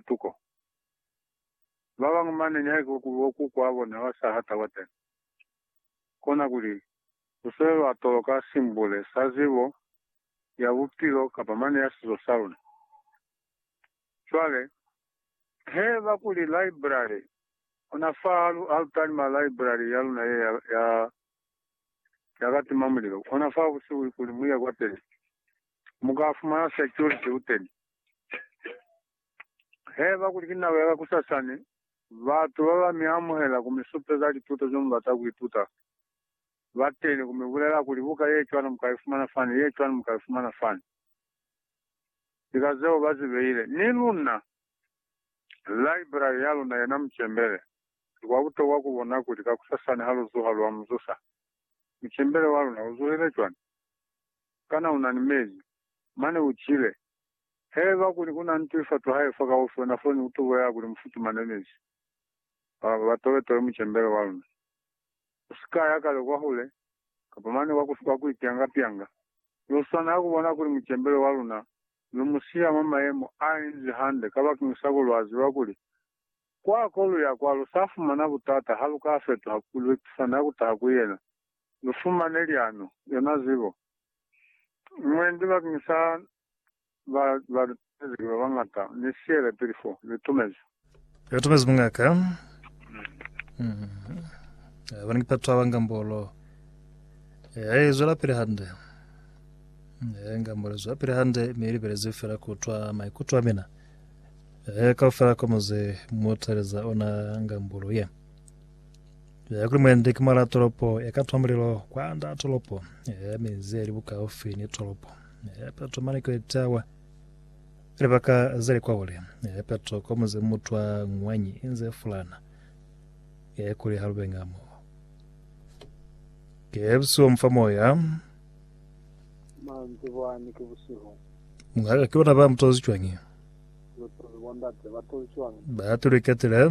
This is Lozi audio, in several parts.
tuko. Babañwi mane nihaike kuli oku kwabona ba saha taba teni, kona kuli lu se lwa toloka simbule sa zibo ya bupilo kapa mane ya sizo sa luna. Cwale, he ba kuli library, ona fa ha lu talima library ya luna ye ya, ya ka tima mulilo, ona fa busihu, kuli mu ye kwateni, mu ka fumana security uteni. Heba kuli ki nako ya ka kusasani, batu ba ba mi amuhela ku mi supeza lituto ze mu bata ku ituta. Ba teni ku mi bulela kuli, Buka ye cwalo mu ka i fumana fani, ye cwalo mu ka i fumana fani. Ki ka zeo ba zi beile. Ni luna, laibrari ya luna yena mucembele. Ki kwa butokwa ku bona kuli ka kusasani ha lu zuha lwa mu zusa. Mucembele wa luna u zuhile cwani? Kana una ni mezi? Mane u cile. Haiba kuli una ntu ifatu hae fa kaufi, ona foni ku tubo ya kuli mu futumane mezi. Ba, ba tobetobe mucembele wa luna. U si ka ya kale kwahule, kapa mane kwa ku, kwa ku ipyanga-pyanga, mi u swanela ku bona kuli mucembele wa luna lu mu siya mwa mayemo a inzi hande, kabakeñisa kuli lwa ziba kuli kwa ko lu ya kwa lu sa fumana butata ha lu ka fetuha, lu ipisana ku taha ku yena. lu fumane lyanu yona zibo. Mwendi bakeng sa ba ba lu tumezi ki ba bañata, ni siyele pili fo. Lu tumezi. Lu tumezi Muñaka. Amen. Abani ki patu aba nga mbolo. Ee, i zwela pili hande. Ee, nga mbolo i zwela pili hande, mi i libelezi fela ku utwa maikuto a mina. Ee, kaufela kwa muze mu taleza ona nga mbolo ye. Clemente ki mwala tolopo ya ka tomolelo kwa nda tolopo ya minzi ya li bukaufi ni tolopo. Peto mane ki etawa libaka za li kwaule. Peto ko muze mutwa ngwanyi inze fulana kuli ha lube ngamo. Kebsi wa mufa moya. Manzi bwani ki busihu. Ngaka ki bona ba mutozi cwangi. Lutozi bondate ba tozi cwangi. Ba tuluketile.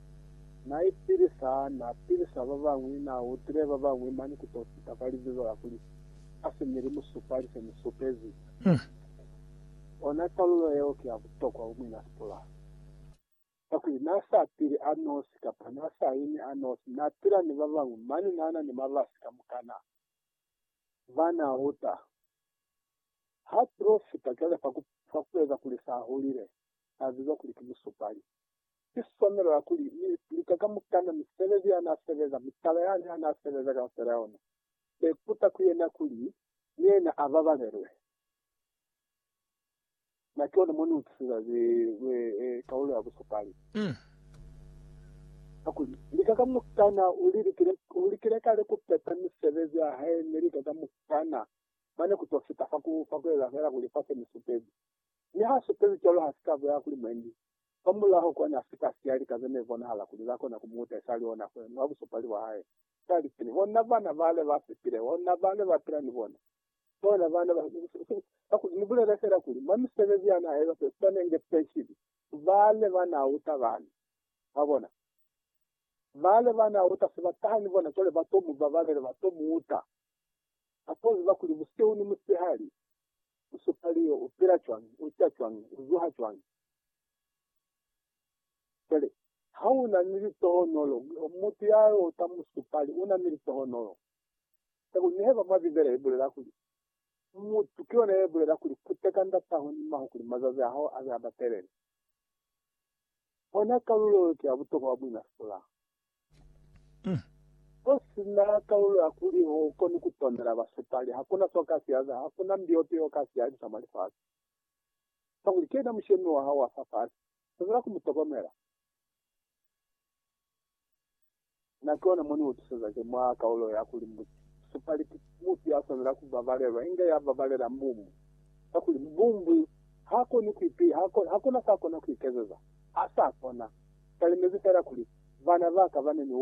Na ipilisa, na pilisa babañwi, na utile babañwi mane ku to fita ka libizo la kuli, A si mi li mu supali se mu supezi. Ona kalulo yeo ki ya butokwa ku mwina sipula. Kakuli na sa pili a nosi, kapa na sa imi a nosi, na pila ni babañwi, mane na na ni mabasi kamukana ba na uta. Ha tulo fita cwale fa ku, fa ku eza kuli sa hulile, sa bizwa kuli ki musupali. Ki swanelo ya kuli ni lika kamukana misebezi ya n'a sebeza, mutala yani ha n'a sebeza kaufela ona. Be kuta ku yena kuli ni yena a babalelwe. Na ki ona mo ni utwiseza ze lwe kaulo ya busupali, kakuli lika kamukana u li likile, u likile kale ku peta misebezi ya hae, mi lika kamukana mane ku t'o fita fa ku, fa ku eza fela kuli fa se ni supezi. Mi h'a supezi cwalo ha si ka bolela kuli mwendi Kwamulaho kwani a si ka siya lika ze ne bonahala kuli za kona ku mu utahisa li ona kuli ni wa busupali bwa hae. Ka lipeni, bona bana bale ba fepile, bona bale ba pila ni bona, bona bana ba. Kakuli ni bulele fela kuli mwa misebezi ya n'a eza se swanenge penshini, bale ba n'a uta bani. Mwabona? Bale ba n'a uta se ba taha ni bona, cwale ba t'o mu babalela, ba t'o mu uta. Ba t'o ziba kuli busihu ni musihali, U supa liyo, u pila cwañi, u ca cwañi, u zuha cwañi. Cwale, ha u na ni litohonolo, mutu ya yo ta mu supa li, u na ni litohonolo. Ka ku neheba mwa Bibele i bulela kuli, Mutu ki yona ye bulela kuli, Kuteka ndataho ni maho kuli mazazi a hao a be a batelele. Ona kalulo yo ki ya butokwa bwa buina fela. Ku si na kalulo ya kuli ho koni ku tonela basepali, ha ku na so ka si yaza, ha ku na mbi yope yo ka si yalisa mwa lifasi. Kakuli ki yena Mushemi wa hao wa fa fasi, zwezela ku mu tokomela. Na ki ona mo ni utuseza ki mwa kalulo ya kuli musepali ki mufi ya swanela ku babalelwa, inge ya babalela mbumbu, kakuli mbumbu Ha koni ku ipi, ha, ha kuna sa kona ku ikezeza. Ha sa kona. Talimezi fela kuli, Bana ba ka ba ne ni u,